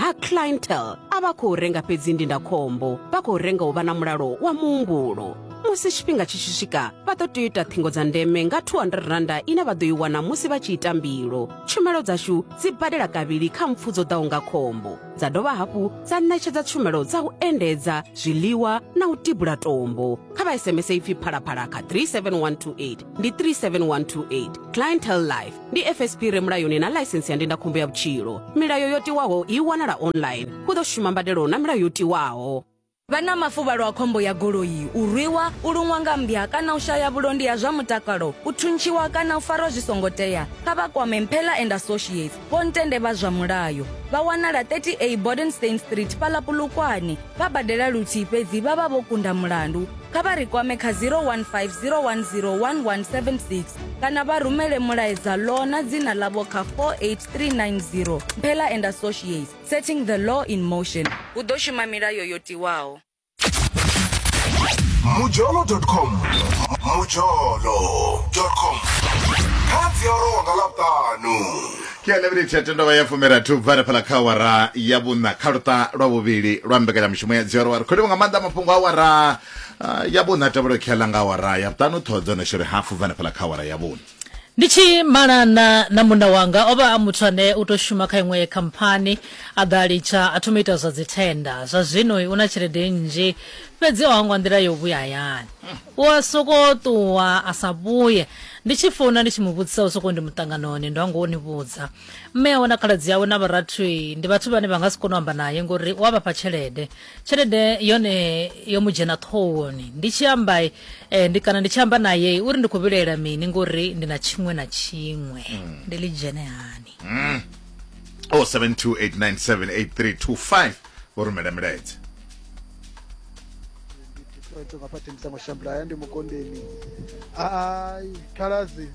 ha clientele a vha khou renga fhedzi ndindakhombo vha khou renga u vha na mulalo wa muhumbulo musi tshifhinga tshi tshi swika vha ḓo tea u ita ṱhingo dza ndeme nga 200 randa ine vha ḓo i wana musi vha tshi ita mbilo tshumelo dzashu dzi badela kavhili kha mpfu dzo ḓaho nga khombo dza dovha hafhu dza ṋetshedza tshumelo dza u endedza zwiḽiwa na u tibula tombo kha vha sms ipfi phalaphala kha 37128 ndi 37128 clientele life ndi fsp re mulayoni na ḽaisentsi ya ndindakhombo ya vhutshilo milayo yo tiwaho i wanala online hu ḓo shuma mbadelo na milayo yo tiwaho vha na mafuvhalo a khombo ya goloi u rwiwa u luṅwa nga mmbya kana u shaya vhulondi ha zwa mutakalo u thuntshiwa kana u farwa zwi songo tea kha vha kwame mphela and associates vho ntende vha zwa mulayo vha wanala 30a bodenstein street fhaḽa pulukwane vha badela luthihi fhedzi vha vha vho kunda mulandu, kha vha ri kwame kha 015 010 1176 kana vha rumele mulaedza Law na dzina ḽavho kha 48390. Mphela and Associates, Setting the Law in Motion. Hu ḓo shuma milayo yo tiwaho. mujolo.com mujolo.com kha dzi a rowa nga ḽavhuṱanu Ke ya ḽeminitsi ya tendovha ya fumirathi u bva hanefhaḽa kha awara ya vhuṋa kha luṱa lwa vhuvhili lwa mbekanyamushumo ya dzioro wa ri kholiwa nga maanḓa mafhungo a awara ah, ya vhuṋa a tevhelo khe ḽa nga awara ya vhuṱanu ṱhoho dzo no shori hafu bva hanefhaḽa kha awara ya vhuṋa Ndi tshi malana na munna wanga o vha a muthu ane u tou shuma kha iṅwe khamphani a ḓa a litsha a thoma u ita zwa dzithenda zwa zwino u na tshelede nnzhi fhedzi o hangwa nḓila yo vhuya hayani u a sokou ṱuwa a sa vhuye Ndi tshi founa ndi tshi mu vhudzisa u sokou ndi muṱanganoni ndo hango u ni vhudza. Mme awe na khaladzi awe na vharathu ndi vhathu vhane vha nga si kone u amba naye ngori u a vha fha tshelede. Tshelede yone yo mu dzhena ṱhohoni. Ndi tshi amba eh, ndi kana ndi tshi amba naye uri ndi khou vhilaela mini ngori ndi na tshiṅwe na tshiṅwe. Ndi ḽi dzhene hani? 0728978325 vho rumela milaedza ai khalazi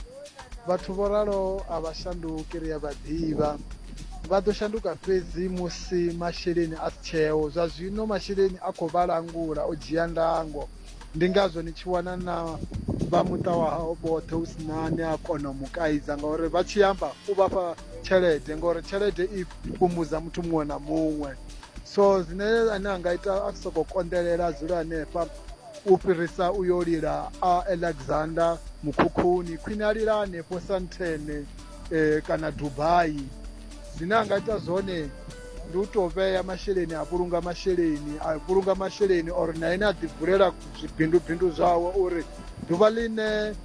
vhathu vho ralo a vha shanduki ri a vha ḓivha vha ḓo shanduka fhedzi musi masheleni a si tsheo zwa zwino masheleni a khou vha langula o dzhia ndango Ndi ngazwo ni tshi wana na vha muṱa wa hao vhoṱhe hu si na ne a kona u mu kaidza ngauri vha tshi amba u vha fha tshelede ngauri tshelede i fhumudza muthu muṅwe na muṅwe so zwine ane a nga ita a sokou konḓelela a dzula hanefha u fhirisa u yo lila a alexander mukhukhuni khwine a lila hanefho santhene e, kana dubai zwine a nga ita zwone ndi u tou vhea masheleni a vhulunga masheleni a vhulunga masheleni or na ene a ḓivulela zwibindubindu zwawe uri ḓuvha ḽine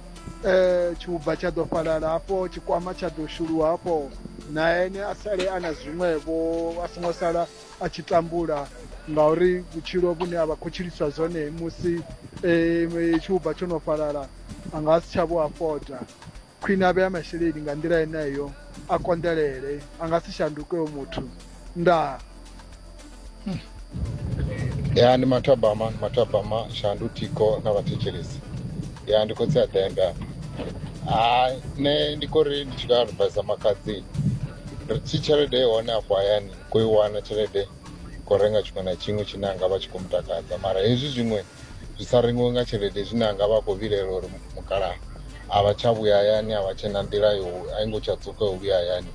um tshiuba tsha ḓo fhalala hafho tshikwama tsha ḓo shuluwa hafho na ene a sale a na zwiṅwevho a songo sala a tshi tambula ngauri vhutshilo vhune a vha khou tshiliswa zwone musi um tshiuba tsho no fhalala a nga si tsha vho afoda Khwine a vhea masheleni nga nḓila yeneyo a konḓelele, a nga si shanduke hoyo muthu. Ndaa. ya ndi mathabama ndi mathabama shandu thiko na vhathetshelesi ya ndi khotsi a ḓembe apa ha nṋe ndi khou ri ndi tshi khou advisa makhadzi ri tshi tshelede i hone afho hayani khou i wana tshelede khou renga tshiṅwe na tshiṅwe tshine a nga vha tshi khou mutakadza mara hezwi zwiṅwe zwi sa rengiwe nga tshelede zwine anga vha khou vhilela uri mukalaha a vha tsha vhuya hayani a vha tshena nḓila yo a i ngo tsha dzuka u vhuya hayani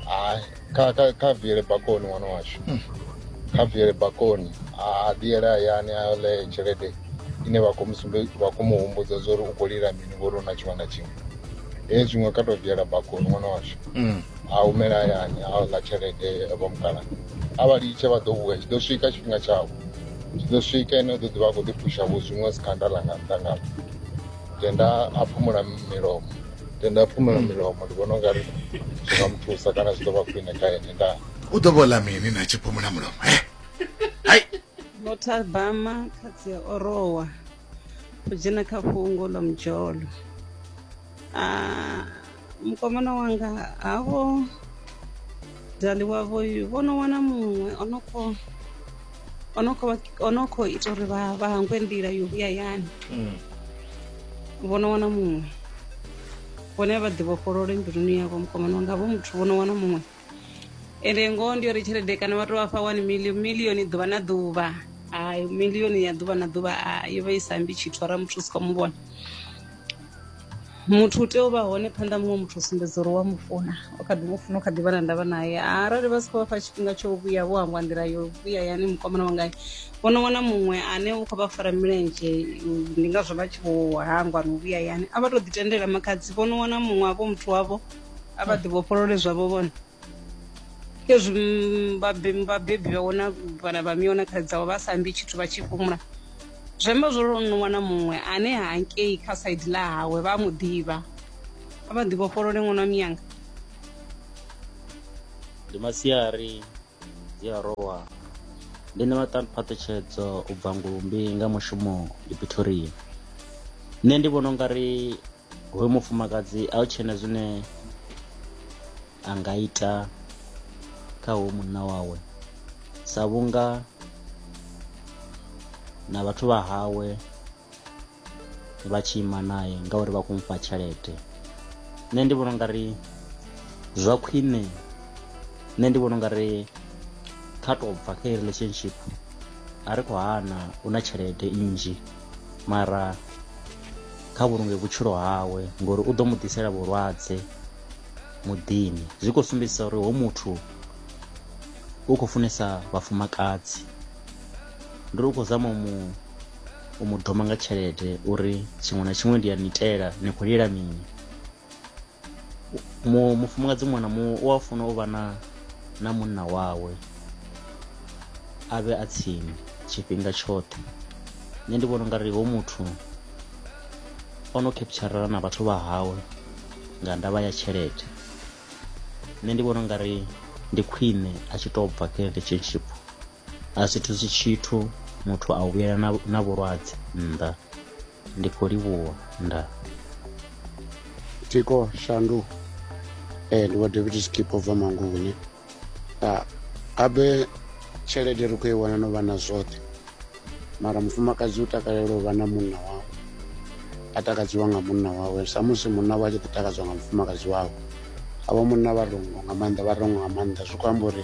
hai kha kha kha viele bakoni ṅwana washu kha viele bakoni a ḓiyele hayani a yo ḽee tshelede ine vha khou musumbe vha khou mu humbudza zwa uri u khou lila mini ngori u na tshiṅwe na tshiṅwe he zwiṅwe kha tou viela bakoni ṅwana washu a humela hayani a ḽa tshelede vha mukalaha a vha litshe vha ḓo vhuya tshi ḓo swika tshifhinga tshavho zwi ḓo swika ene u ḓo ḓivha a khou ḓiphusha vho zwiṅwe sikhanda ḽa nga nnḓa nga tenda a phumula milomo tenda a phumula milomo ndi vhona ungari zwi nga mu thusa kana zwi ḓo vha khwine kha ene ndaa u ḓo vhola mini na tshi phumula mulomo he hai Notabama khatsi ya Orowa u dzhena kha fhungo ḽa mudzholo mukomana wanga havho dali wavho vho no wana muṅwe o no khou o no khou o no khou ita uri vha vha hangwe nḓila yo vhuya yani mm. vho no wana muṅwe vhone vha ḓi vhofholole mbiluni yavho mukomana wanga vho muthu vho no wana muṅwe ende ngoho ndi uri tshelede kana vha to vha fha one million millioni ḓuvha na ḓuvha hai millioni ya ḓuvha na ḓuvha a yo vha i sambi tshithu ara muthu u si khou mu vhona muthu u tea u vha hone phanḓa muṅwe muthu u sumbedza uri wa mu funa u kha ḓi mu funa u kha ḓi vha na ndavha naye arali vha si khou vha fha tshifhinga tsho vhuya vho hangwa nḓila yo vhuya yani mukomana wa ngayo vhono wana muṅwe ane u khou vha fara milenzhe ndi ngazwo vha tshi vho hangwa no vhuya yani a vha to ḓi tendela makhadzi vhono wana muṅwe avho muthu wavho a vha ḓivhofholole zwavho vhone ezwi vhabebi vhabebi vha wana vhana vha miona kha dzavho vha sa ambi tshithu vha tshi fhumula zwi amba zwo ri no wana muṅwe ane hangei kha saidi ḽa hawe vha a mu ḓivha a vha ḓivhofholole ṅwana miyanga ndi masiari dzi a rowa ndi ṋewa phaṱhutshedzo u bva ngulumbi nga mushumo ndi pretoria nṋe ndi vhona ungari hoyu mufumakadzi a u tshena zwine a nga ita kha hoyu munna wawe sa vhunga na vhathu vha hawe vha tshi ima naye ngauri vha khou mufha tshelede nṋe ndi vhona ungari zwa khwine nṋe ndi vhona ungari kha tou bva kha relationship a ri khou hana u na tshelede nnzhi mara kha vhulunge vhutshilo hawe ngori u ḓo mu ḓisela vhulwadze muḓini zwi khou sumbedzisa uri ho muthu u khou funesa vhafumakadzi ndi ri u khou zama mu u mu doma nga tshelede uri tshiṅwe na tshiṅwe ndi a ni itela ni khou lilela mini mufumakadzi muṅwe na muṅwe u a funa u vha na na munna wawe a vhe a tsini tshifhinga tshoṱhe nṋe ndi vhona u nga ri ho muthu o no capturela na vhathu vha hawe nga ndavha ya tshelede nṋe ndi vhona u nga ri ndi khwine a tshi tou bva kha relationship a si thusi tshithu muthu a u vhuyela na, na vhulwadze nnḓa ndi khou livhuwa nda tiko shandu eh, ndi wa david skip over manguvhuni ah, abe tshelede ri khou i wana no vha na zwoṱhe mara mufumakadzi u takalela u vha na munna wawe a takadziwa nga munna wawe samusi munna wawe a tshi ḓi takadzwa nga mufumakadzi wawe avho munna vha rongo nga maanḓa vha rongo nga maanḓa zwi khou amba uri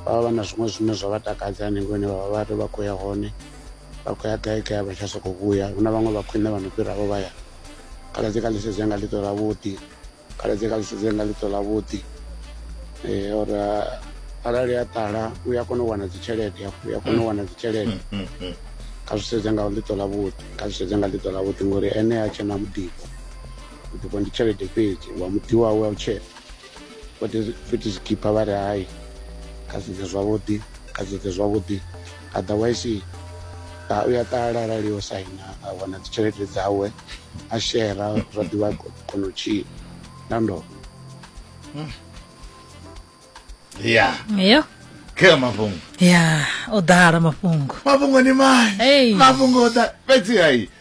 vha vha vha na zwiṅwe zwine zwa vha takadza hanengei hune vhavha vhari vha khou ya hone vha khou ya gai gai vha tsha sokou vhuya hu na vhaṅwe vha khwine vha no fhiraho vha ya khaladzi kha ḽisedzo yanga ḽiṱo ḽa vhuḓi khaladzi kha ḽisedzo yanga ḽiṱo ḽa vhuḓi eh, or eh, arali a ṱala u ya kona u wana dzitshelede hafho u ya kona u wana dzitshelede mm, mm, mm. kha zwi sedze nga ḽiṱo ḽa vhuḓi kha zwi sedze nga ḽiṱo ḽa vhuḓi ngori ene a tshena muḓifho muḓifho ndi tshelede fhedzi wa muḓi wawe a u tshena futhi zwi khipha vha ri hai kha sedze zwavhuḓi kha sedze zwavhuḓi otherwise u ya ṱala arali o saina a wana dzi tshelede dzawe a shera zwa ḓivha kona u tshila na ndo hmm. ya yo khe mafhungo ya o ḓala mafhungo mafhungo ni mai mafhungo o ḓa fhedzi hai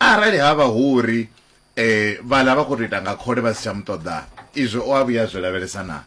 Arali ha vha hu uri e, vhaḽa vha khou tou ita nga khole vha si tsha mu ṱoḓa, izwo o a vhuya a zwi lavhelesa naa?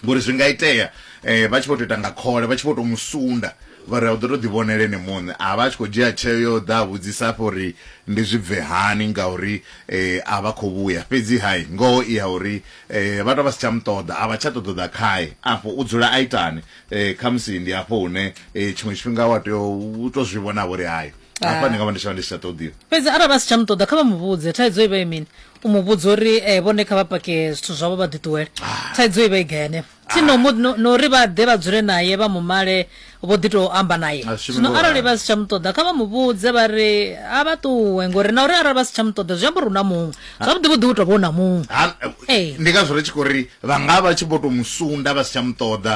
Ngori zwi nga itea e, vha tshi vho tou ita nga khole, vha tshi vho tou mu sunda, vha ri u ḓo tou ḓivhonela ene muṋe. A vha a tshi khou dzhia tsheo ya u ḓa a vhudzisa afha uri ndi zwi bve hani ngauri e, a vha khou vhuya. Fhedzi-ha ngoho i ya uri e, vha tou vha si tsha mu ṱoḓa, a vha tsha ṱoḓa u ḓa khae. Afho u dzula a itani? E, khamusi ndi afho hune e, tshiṅwe tshifhinga wa tea u tou zwi vhona-vho uri hai, Ah. hafha ndi nga vha ndi tsha vha ndi si tsha ṱoḓiwa fhedzi arali vha si tsha mu ṱoḓa kha vha mu vhudze thaidzo i vha i mini u mu vhudza uri eh, vhone kha vha pake zwithu zwavho vha ḓiṱuwele Ah. thaidzo i vha i gai henefho thi no mu- no- no uri vha ḓe vha dzule naye vha mu male vho ḓi tou amba naye A shumi zwino ngo arali ralo. vha si tsha mu ṱoḓa kha vha mu vhudze vha ri a vha ṱuwe ngori na uri arali vha si tsha mu ṱoḓa zwi amba uri hu na muṅwe Ah. zwavhuḓi vhuḓi u tou vha u na muṅwe Ha- Ee. ndi ngazwo ri tshi khou ri vha nga vha tshi vho tou mu sunda vha si tsha mu ṱoḓa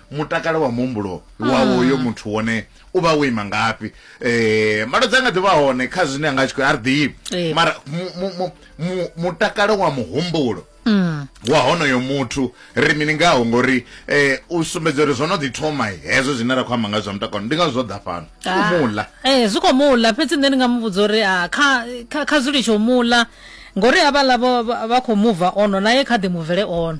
mutakalo wa muhumbulo wa mm. uyo muthu wone u vha wo ima ngafhi um malwadze a nga ḓi vha hone kha zwine a nga tshi khou a ri ḓivi eh. mara mutakalo wa muhumbulo Mm. wa honoyo muthu ri mini ngaho ngori eh u sumbedza uri zwo no ḓi thoma hezwo zwine ra khou amba nga zwa mutakalo ndi nga zwo ḓa fhano ah. muḽa eh zwi khou muḽa fhedzi nṋe ndi nga mu vhudza uri ah, kha kha zwi litsho muḽa ngori havhaḽa vha khou muva ono naye kha ḓi muvele ono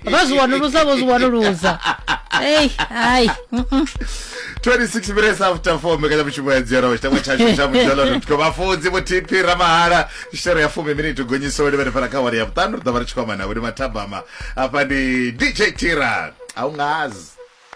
vha zwi wanulusa vho zwi wanulusa ei hai mm, mm. 26 minutes after 4 mbekanyamushumo ya dzero chitangwa chashu cha mujolo.com vhafunzi vho tp ramahala shero ya fumi miniti gonyiso ri vhane fana kha wari ya vhuṱanu ri ḓo vha ri tshi khou amba navho ndi mathabama afha ndi dj tira a u ngazi